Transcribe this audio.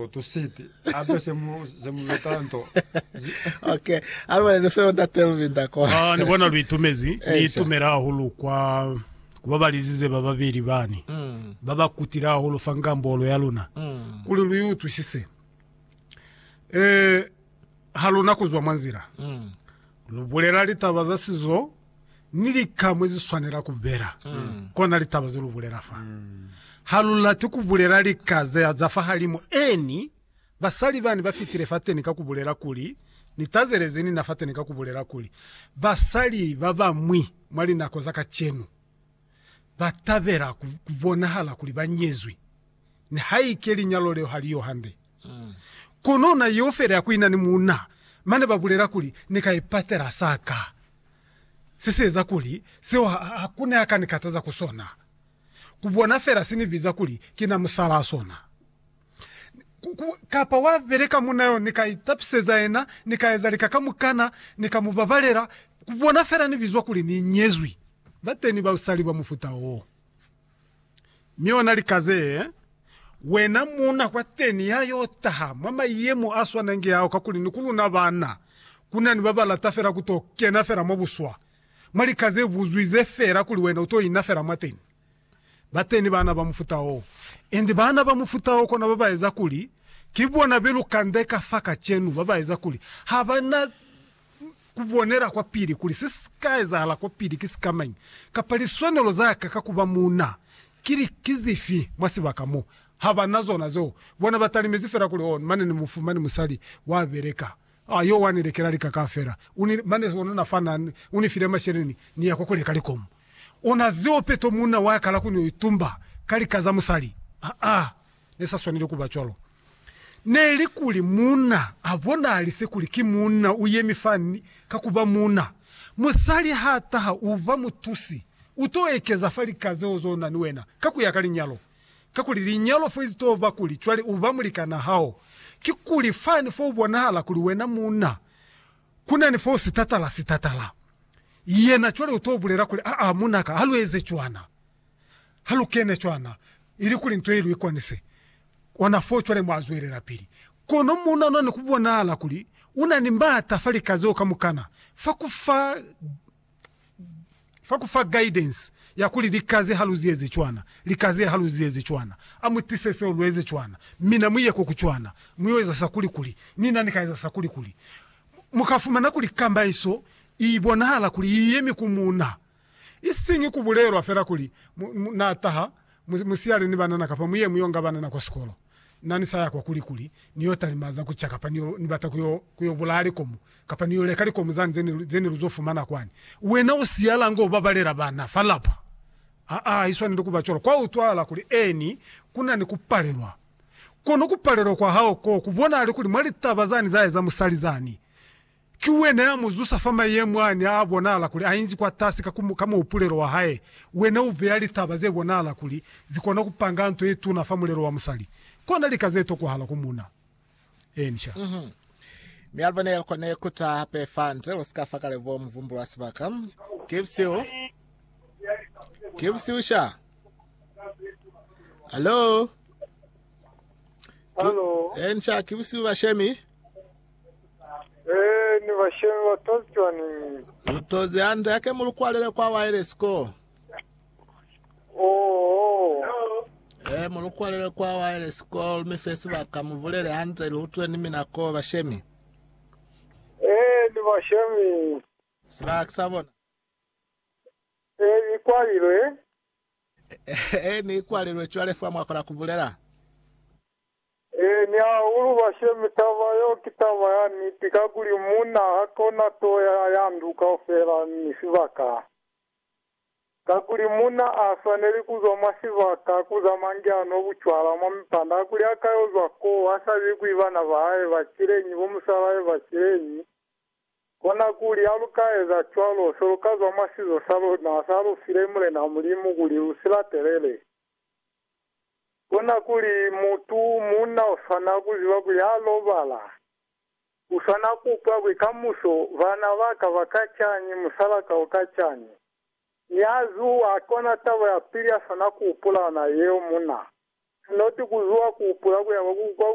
Go to sit. Abe se mu se mu beta nto. Ok. Alibale ni feo ntate Luvinda kwa. Ah, ni bona lu itumezi. Ni itumela hahulu kwa kuba balizize ba babeli bani. Ba ba kutile hahulu fa ngambolo ya luna. Kuli lu i utwisise. Eh, Ha lu na ku zwa mwa nzila, lu bulela litaba za sizo ni lika mwe zi swanela ku bela, kona litaba ze lu bulela fa. Ha lu lati ku bulela lika ze za fahalimu eni basali bani ba fitile fateni ka ku bulela kuli, Ni tazele ze ni na fateni ka ku bulela kuli, Basali ba bañwi mwa linako za kacenu. ba tabela ku, ku bonahala kuli ba nyezwi, nihaike linyalo leo ha li yo hande. Kono na yeo fela ya ku ina ni muuna, mane ba bulela kuli, Ni ka ipatela sa ka. Se si eza kuli seo ha, ha ku ne a ka ni kataza ku sona. Ku bona fela si ni biza kuli ki na musalaa sona. kapa wa beleka munna yo, ni ka itapiseza yena, ni ka eza lika kamukana, ni ka mu babalela, ku bona fela ni bizwa kuli ni nyezwi. Ba teni basali ba mufuta wo. Mi ona lika ze, wena muuna kwa teni ya yo taha mwa mayemo a swanange ao, kakuli ni ku luna banna, ku na ni ba ba lata fela ku to kena fela mwa buswa, mwa lika ze buzwize fela kuli wena u to ina fela mwateni. Bateni baana ba mufuta wo, inge baana ba mufuta wo kona babaeza kuli ki bona belukande ka fa kacenu, babaeza kuli habana kubonela kwa pili kuli se sika ezahala kwa pili ki sikamañi, kapa liswanelo za ka ka kuba muuna kili ki zifi mwa sibaka mo. Habana zona zeo, bona batalimezi fela kuli, Oh, mane ne mufumani musali wa beleka A yo wa ni lekela lika kaufela. U ni, mane ona na fa na, u ni file masheleni, ni ya kwa ku leka likomu. Ona zeo peto munna wa kala ku n'o itumba ka lika za musali. Aa, ne sa swaneli ku ba cwalo. Neli kuli munna a bonalise kuli ki munna u yemi fa ni, ka ku ba munna. Musali ha taha, u ba mutusi. U t'o ekeza fa lika zeo z'o na ni wena, ka ku ya ka linyalo. Kakuli linyalo fo izitoo ba kuli cwale u ba mulikanaa hao, kikuli fani fo u bonahala kuli wena muuna, ku na ni fo sitatala sitatala. Yena cwale u t'o bulela kuli, Aa, muuna ka, ha lu eze cwana. Ha lu kene cwana, ilikuli nto ye lu ikwanise. Ona foo cwale mwa zwelela-pili. Kono muuna ona ni ku bonahala kuli u na ni m'ata fa lika zeo kamukana, fa ku fa Fa ku fa guidance ya kuli lika ze ha lu zieze cwana, lika ze ha lu zieze cwana, a mu tise seo lu eze cwana, mi na mu ye ko ku cwana, mu yo eza sa kuli kuli, ni na ni ka eza sa kuli kuli. Mu ka fumana kuli kamaiso i bonahala kuli i yemi ku muuna. Isiñi ku bulelwa fela kuli, mu, mu, na taha, mu, mu siyale ni banana kapa mu ye mu yo nga banana kwa sikolo. Na ni sa ya kwa kuli kuli ni yo talima za ku ca kapa ni yo, ni bata ku yo, ku yo bulaya likomo kapa ni yo leka likomo zani ze ni, ze ni lu zo fumana kwani. Wena u siyala nga u babalela bana fa lapa? Aa, ha i swaneli ku ba cwalo. Kwa utwahala kuli, eeni, ku na ni ku palelwa. Kono ku palelwa kwa hao koo ku bonahala kuli mwa litaba zani za eza musali zani, Ki wena ya mu zusa fa mayemo a ne a bonahala kuli a inzi kwatasi ka ku, ka muhupulelo wa hae. Wena u beya litaba ze bonahala kuli zi kona ku panga nto ye tuna fa mulelo wa musali, kona lika ze tokohala ku muna. Encia. Mhm. Mi Alva ne kone ku taha hape fa nze, lu si ka fa kale bo muvumbulu wa sibaka. Ki busihu. Ki busihu sha. Hallo? Ki, Hallo. encia, ki busihu bashemi. Ee, ni bashemi ba tozi cwaniñi? Lu tozi hande, hake mu lu kwalele kwa waelesi ko. Oho. Ee, mu lu kwalele kwa waelesi ko, lu mi fe sibaka, mu bulele hande, lu utwe ni mina ko, bashemi. Ee, ni bashemi. Sibaka ki sa bona. Ee, ni kwalilwe. Ee, ni kwalilwe cwale fa mwa kona ku bulela. Ee, ni hahulu, bashemi, taba yeo ki taba ya niti, kakuli munna ha kona to ya, ya ndu kaufela ni sibaka, kakuli munna a swaneli kuzwa mwa sibaka, kuza mangi a nwa bucwala mwa mipanda, kakuli ha ka yo zwa koo, ha sa bi kwi bana ba hae ba cileñi, bo musalahae ba cileñi, konakuli, ha lu ka eza cwalo, se lu ka zwa mwa sizo sa luna, sa lu file Mulena Mulimu kuli lu si latelele. Kona kuli mutu munna uswana kuziba kuli ha lobala, uswana kupa kuli kamuso bana baka baka cani, musalaka uka cani. Niha zuwa, kona taba ya pili yaswana kuhupula yona yeo, munna sinoti kuzuwa kuhupula kuyaba kwa